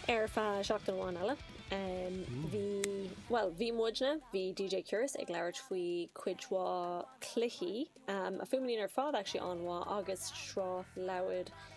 Ar feadh seachtain amháin eile, bhí, bhuel, bhí muidne, bhí DJ Curious ag labhairt faoi cuid mhaith cluichí, a fhuaimníonn ar fad actually, an-mhaith, agus sraith leabhair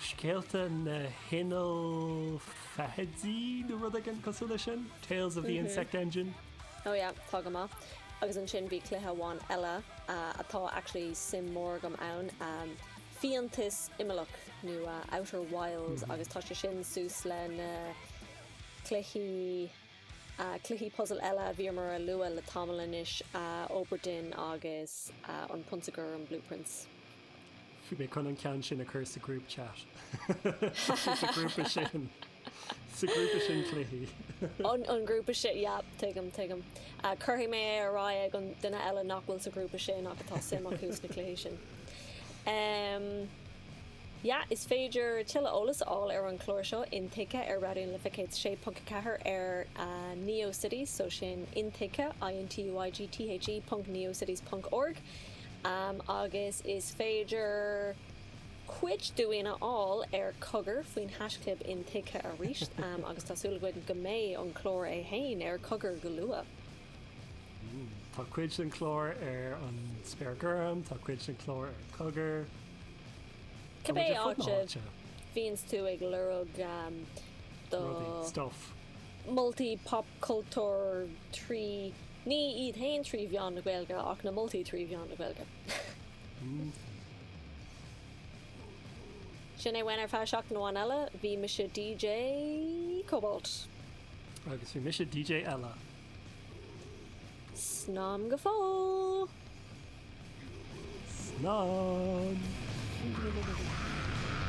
Scéalta na hInneall Feithidí nó rud éigin cosúil leis sin, Tales of the Insect Engine. Ó yeah, tá go maith. Agus ansin bhí cluiche amháin eile atá actually suim mór agam ann, Fiántas Imeallach nó Outer Wilds agus tá sé sin suas le na cluichí, cluichí puzzle eile a bhíomar a lua le tamall anois, Obra Dinn agus An Prionsa Gorm, Blue Prince. Beidh mé chun an ceann sin a chur sa group chat. Sa grúpa sin. Sa grúpa sin cluichí. An grúpa sin, yeah, tuigim, tuigim. Cuirfidh mé é ar aghaidh ag an duine eile nach bhfuil sa ghrúpa sin ach atá suim acu sna cluichí sin. Em, yeah, is féidir tuilleadh eolas a fháil ar an chlár seo intuigthe ar Raidió na Life 106.4 ar NeoCities, so sin intuigthe, i-n-t-u-i-g-t-h-e, ponc neocities ponc org. agus is féidir cuid dínn a fháil ar Cogar faoin haisclib intuigthe arís, agus tá súil againn go mbeidh an clár é féin ar Cogar go luath. Tá cuid den chlár ar an Spéir Gorm, tá cuid den chlár ar Cogar. Cibé áit a bhíonns tú ag lorg do. Rudaí, stuff. Moltaí popchultúir trí. Ní iad féin trí mheán na Gaeilge ach na moltaí trí mheán na Gaeilge. Sin é uainn ar feadh seachtain amháin eile, bhí mise DJ Cobalt. Agus bhí mise DJ eile. Slán go fóill. Slán!